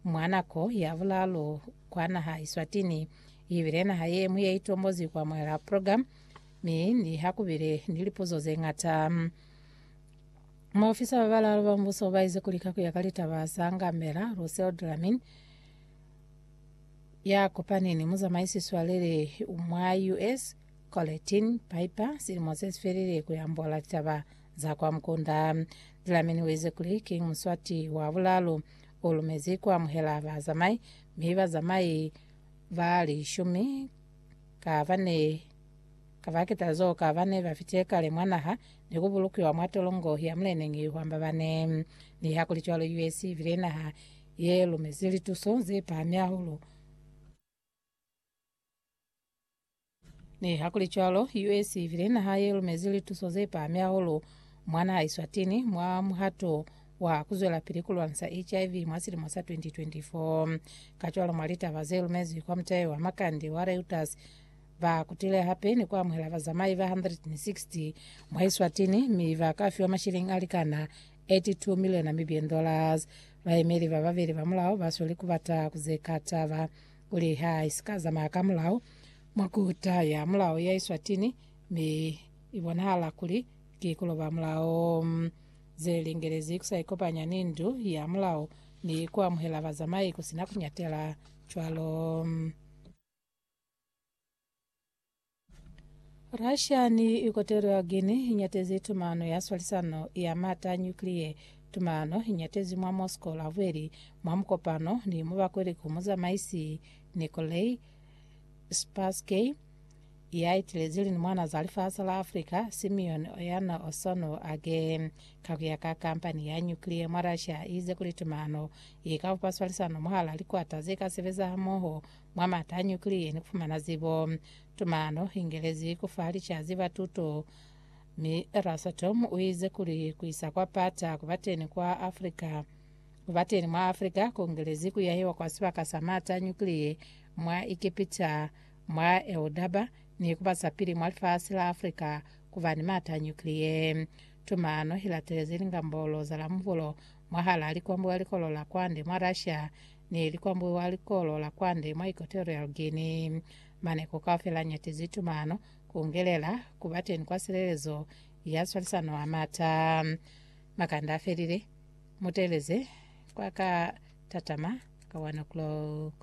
Mwa nako ya bulaalu kwa naha Iswatini, ibile naha ye ñwi ye itombozi ku amuhela program, mi ni ha kubile ni lipuzo ze ñata. Maofisa ba balaalu ba mubuso ba ize kuli ka kuya ka litaba za Ngamela, Russell Dlamini, ya kopani ni muzamaisi swaleli mwa US, Colletin Piper, silimo se si felile ku yambola litaba za kwa mukunda. Dlamini u ize kuli ki Muswati wa bulaalu U lumezi ku amuhela bazamai, mi bazamai ba lishumi ka ba ne ka ba kitazo ka ba ne ba fite kale mwa naha ni ku bulukiwa mwa tolongo ya muleneñi wa Mbabane. Nihakulicwalo, US ibile naha ye lumezi lituso ze pahami hahulu. Nihakulicwalo, US ibile naha ye lumezi lituso ze pahami hahulu mwa naha Eswatini mwa muhato wa ku zwelapili ku lwanisa HIV mwa silimo sa 2024. Kacwalo, mwa litaba ze lumezwi kwa mutayo wa makande wa Reuters, ba kutile hape ni ku amuhela bazamai ba 160 mwa Eswatini mi ba ka fiwa mashilingi a likana 82 miliona Namibian dollars. Bayemeli ba babeli ba mulao ba sweli ku bata ku zeka taba Kuli ha i si ka zamaya ka mulao mwa ku taya mulao ya Eswatini, mi i bonahala kuli ki ku loba mulao. Ze lingelezi ku sa ikopanya ni ndu ya mulao ni ku amuhela bazamai ku si na ku nyatela cwalo. Russia ni ikotelo ya Guinea inyatezi tumano ya swalisano ya mata a nyukliye. Tumano inyatezi mwa Moscow Lavweli mwa mukopano ni mubakweli ku muzamaisi Nikolai Spassky ya itilezi lini mwana za lifasi la Africa Simeon Oyana Osono Agee. Ka kuya ka kampani ya nyukliye mwa Russia iize kuli tumano ikabupa swalisano mwahala likwata zeka sebeza hamoho Mwa mata a nyukiliye ni ku fumana zibo, tumano i ngelezi ku fa licazi ba tuto, mi Eurasatom u ize kuli ku isa kwa pata ku ba teni kwa Africa. Ku ba teni mwa Africa ku ngelezi ku yahiwa kwa sibaka sa mata a nyukiliye mwa Egepita, mwa Eudaba, ni ku ba za pili mwa lifasi la Africa ku ba ni mata a nyukiliye. Tumano i latelezi lingambolo za la mubulo mwahal'a likwambuwa likolo la kwande mwa Russia ni likwambuwa likolo la kwande mwa Equatorial Guinea. Maneko kaufela nyatizi tumano kungelela kuba teni kwa silelezo ya swalisano a mata. Makanda afelile, muteleze kwa ka tatama ka 1 o'clock.